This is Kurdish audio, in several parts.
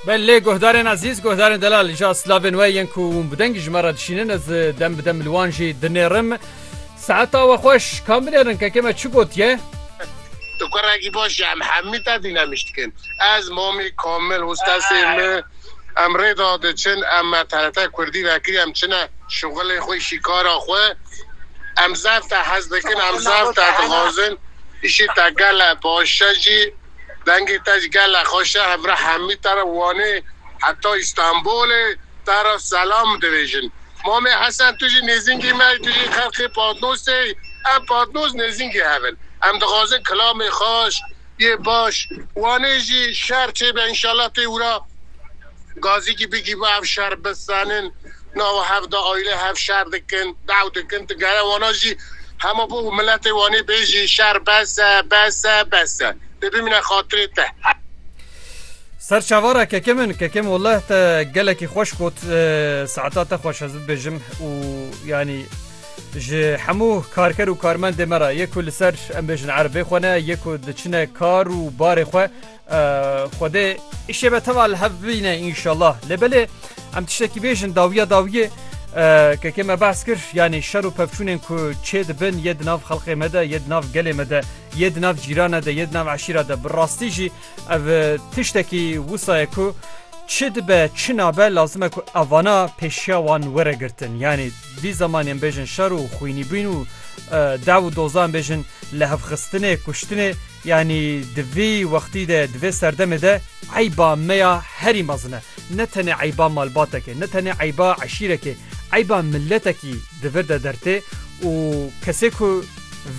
Belê guhdarên ezîz, guhdarên delal ja slavên we yên ku hûn bi dengî ji me re dişînin ez dem bi dem li wan jî dinêrim. Saeta we xweş, kam binêrin kekê me çi gotiye? Tu kurekî baş î em hemî te dînemiş dikin. Ez, Momî, Komil, hostesên me em rê da diçin em me TRT Kurdî vekiriye em çine şixulê xwe îşî kara xwe em zef te hez dikin em zef te dixwazin îşî te gele baş e jî. Dengê te ji gele xweş e. Hevra hemî te re Wanê heta Îstanbûlê te re selam divêjin. Mamê Hesen tu jî nêzîngî me î, tu jî xelkê Patnosê î. Em Patnos nêzîngê hev in. Em dixwazin kilamê xweş yê baş Wanê jî şer çêbe înşallah tê wira. Gazîkî bigî bi ev şer bisenin. Nawa hev de aîle hev şer dikin, dew dikin. Tu gere wana jî hema bo û miletê wanê bêjî şer bes e, bes e, bes e. Dê bimîne xatirê te. Ser çavara keke min, keke min welleh te gelekî xweş got. Saeta te xweş ez bibêjim û yanî ji hemû karker û karmendê me re yê ku li ser em bêjin erbê xwe ne, yê ku diçine kar û barê xwe Xwedê îşê me tewa li hev bîne înşallah. Lê belê em tiştekî bêjin dawiya dawiyê keke me behs kir yanî şer û pevçûnên ku çê dibin yê di nav xelqê me de yê di nav gelê me de yê di nav cîrane de yê di nav eşîra de bi rastî jî ev tiştekî wisa ye ku çi dibe çi nabe lazim e ku evana pêşiya wan were girtin yanî vî zemanên bêjin şer û xwînîbûn û dew û dozan bêjin li hevxistinê kuştinê Yanî di vî wextî de, di vê serdemê de eyba me ya herî mezin e. Ne tenê eyba malbatekê, ne tenê eyba eşîrekê, eyba miletekî di vir de dertê û kesê ku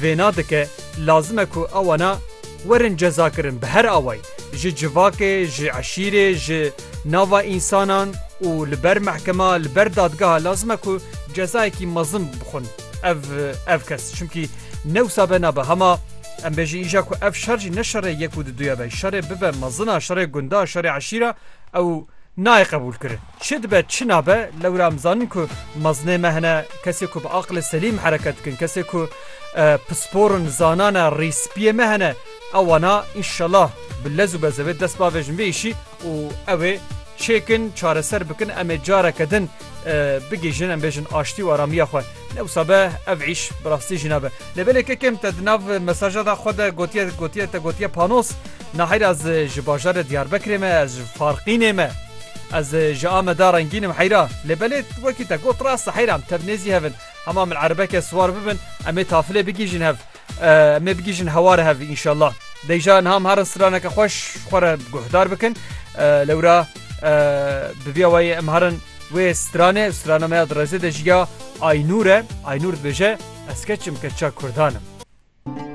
vêna dike lazim e ku ewana werin cezakirin bi her awayî, ji civakê, ji eşîrê, ji nava însanan û li ber mehkema, li ber dadgeha lazim e ku cezayekî mezin bixwin. Ev ev kes çimkî newsa be nabe hema em bêjî îja ku ev şer jî ne şerê yek û diduye be şerê bibe mezina şerê gunda şerê eşîra ew nayê qebûl kirin çi dibe çi nabe lewra em zanin ku mezinê me hene kesê ku bi aqilê selîm hereket dikin kesê ku pisporin zanane rîspiyê me hene ewana înşela bi lez û bezevê dest bavêjin vê îşî û ew ê çêkin, çareser bikin, em ê careke din bigihîjin, em bêjin aştî û aramiya xwe. Ne wisa be ev îş bi rastî jî nabe. Lê belê kekêm te di nav mesaja da xwe de gotiye gotiye te gotiye panos, naheyr ez ji bajarê Diyarbekirê me, ez ji Farqînê me, ez ji Ameda rengîn im heyra. Lê belê wekî te got rast e heyra em tev nêzî hev in. Hema min erebeke siwar bibin, em ê tafilê bigihîjin hev. Em ê bigihîjin heware hev înşallah. Deyja niha em herin straneke xweş xwe re guhdar bikin. Lewra bi vîya wayê em herin wê stranê strana me ya di rêzê de jî ya Aynûr e. Aynûr dibêje ez keçim keça kurdan im.